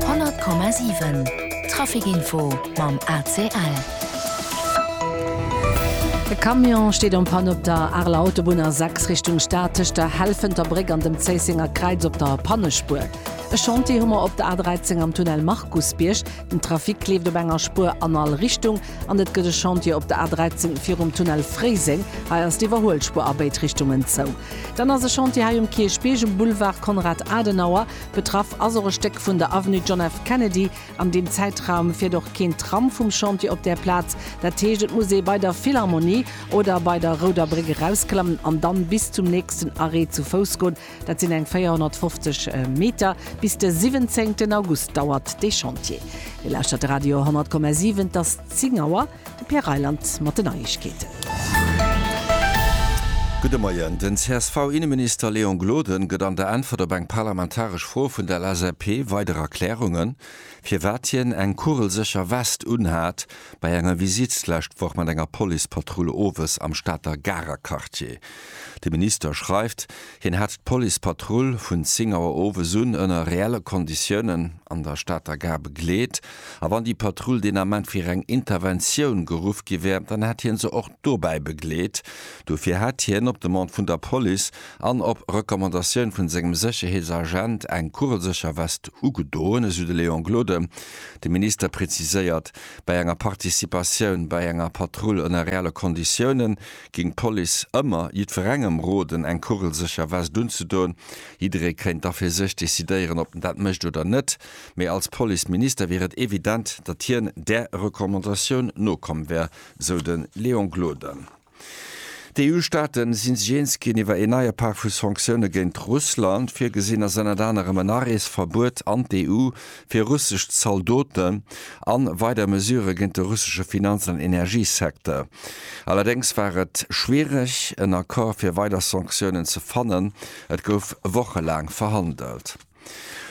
100,7 Trafic info mam ACL. E Camion steet en Panne op der Areler Autobunn A 6 Richtung Stad tëscht der Helfenter Bréck an dem Zéissenger Kräiz op der Pannespuer. E Chantier hu mer op der A13 am Tunnel Markusbierg. Den Trafic kleeft op enger Spuer an all Richtung. An et gëtt e Chantier op der A13 virum Tunnel Fréiseng. Hei ass d'Iwwerhuelspuer a béid Richtungen zou. Dann ass e Chantier hei um Kierchbierg um Boulevard Konrad Adenauer. Betraff ass och e Stéck vun der Avenue John F. Kennedy. An deem Zäitraum fiert och keen Tram vum Chantier op där Plaz. Dat heescht, et muss ee bei der Philharmonie oder bei der Rouder Bréck erausklammen an dann bis zum nächsten Arrêt zu Fouss goen. Dat sinn eng 450 Meter. Bis de 17 August dauert dee Chantier. Dir lauschtert Radio 100,7, et ass 10 Auer. De Pierre Reyland mat den Neiegkeeten. Gudde Moien. Den CSV-Inneminister Léon Gloden gëtt an der Äntwert op eng parlamentaresch Fro vun der LSAP weider Erklärungen, firwat hien eng kugelsécher West unhat bei enger Visitt d'lescht Woch mat enger Policepatrull owes am Stater Garer Quartier. De Minister schreift, hien hätt d'Policepatrull vun 10 Auer owes un ënner reelle Konditiounen an der Stater Gare begleet. A wann déi Patrull deen Ament fir eng Interventioun geruff gi wär, dann hätt hie se och dobäi begleet. Dofir hätt hien op Demande vun der Police an op Recommandatioun vu sengem Sécherheetsagent eng kugelsécher West ugedoen, esou de Léon Gloden. De Minister preziséiert, Bei enger Participatioun bei enger Patrull ënner reelle Konditiounen ging d'Police ëmmer jiddwerengem roden eng kugelsécher Vest unzedoen. Jidderee kéint da fir sech decidéieren ob en dat mécht oder net, mee als Police Minister wier et evident, datt hien där Recommandatioun nokomm wär, sou de Léon Gloden. D'EU-Staate si sech eens ginn iwwer een neie Pak vu Sanktioune géint Russland. Virgesinn ass ënnert anerem en Areesverbuet an d'EU fir russesch Zaldoten a weider Mesurë géint de russesche Finanz an Energiesecteur. Allerdéngs war et schwiereg, en Accord fir weider Sanktiounen ze fannen. Et gouf wochelaang verhandelt.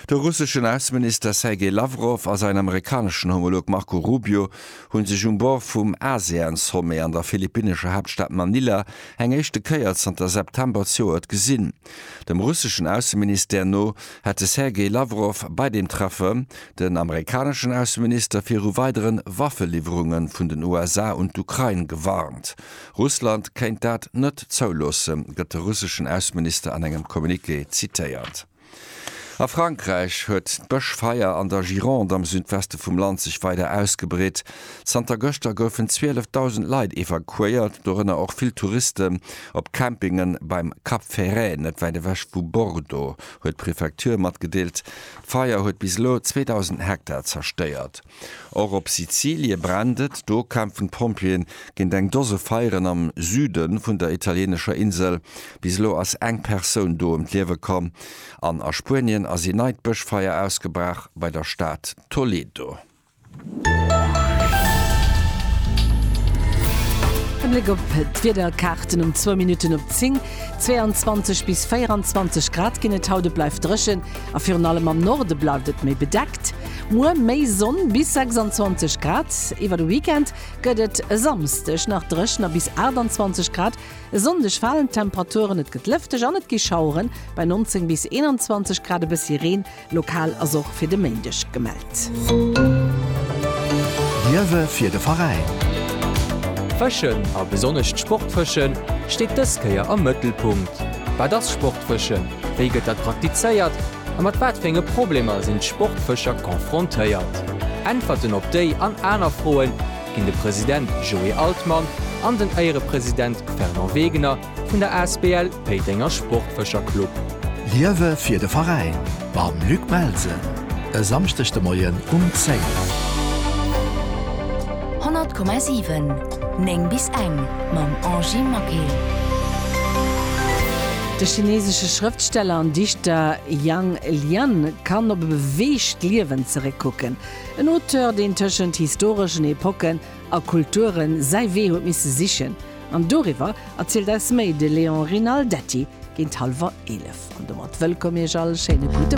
De russeschen Ausseminister Sergei Lawrow a säin amerikaneschen Homolog Marco Rubio hu sech um Bord vum ASEAN-Sommet an der philippinnescher Haaptstad Manila eng éischte Kéier zanter September z'joert gesinn. Dem russeschen Ausseministère no hätt de Sergei Lawrow bei deem Treffe den amerikaneschen Ausseminister viru weidere Waffeliwwerunge vun den USA un d'Ukrain gewarnt. Russland kéint dat net zouloosse, gëtt de russeschen Ausseminister an engem Communiqué zitéiert. A Frankräich huet d'Bëschfeier an der Gironde am Südweste vum Land sech weider ausgebreet. Zanter gëschter goufen 12.000 Leit evakuéiert, dorënner och vill Touristen, op Campingen beim Cap Ferret, net wäit ewech vu Bordeaux, huet d'Prefecture matgedeelt. D'Feier huet bis elo 2.000 Hektar zerstéiert. Och op Sizilie brennt et, do kämpfen d'Pompjeeë géint eng Dose Feieren am Süde vun der italienescher Insel. Bis elo ass eng Persoun do ëm d'Liewe komm. An a Spuenien ass een neit Bëschfeier ausgebraach bei der Stad Toledo. E Bléck op d'Wiederkaarten um zwou Minutten op 10, 22 bis 24 Grad ginn et haut, et bleift dréchen a virun allem am Norde bleift et méi bedeckt. Muer méi Sonn, bis 26 Grad. Iwwer de Weekend gëtt et e Samsdeg nach dréchen a bis 28 Grad. E Sonndeg falen d'Temperaturen, et gëtt lëfteg an et gi Schaueren bei 19 bis 21 Grad, e bëssi Reen Lokal ass och fir de Méindeg gemellt. Liewe fir de Veräin! Fëschen, a besonnesch d'Sportfëschen, steet dës Kéier am Mëttelpunkt. Wat ass Sportfëschen, wéi gëtt dat praktizéiert a mat wat fir enge Problemer sinn d'Sportfëscher confrontéiert? Äntwerten op déi an aner Froe ginn de President Joé Altmann an den Éierepresident Fernand Wegener Vun der Asbl Péitenger Sportfëscher Club. Liewe fir de Veräin mam Luc Melsen e Samschdeg de Moien um 10. 100,7 9 bis eng mam Angie Maquet. De chineesesche Schrëftsteller an Dichter Yang Lian kann op e beweegt Liewen zeréckkucken. En Auteur, deen tëschent historeschen Epocken a Kulture säi Wee huet misse sichen, An doriwwer erzielt eis méi de Léon Rinaldetti géint hallwer 11. An domat wëllkomm Iech all, schéine gudde.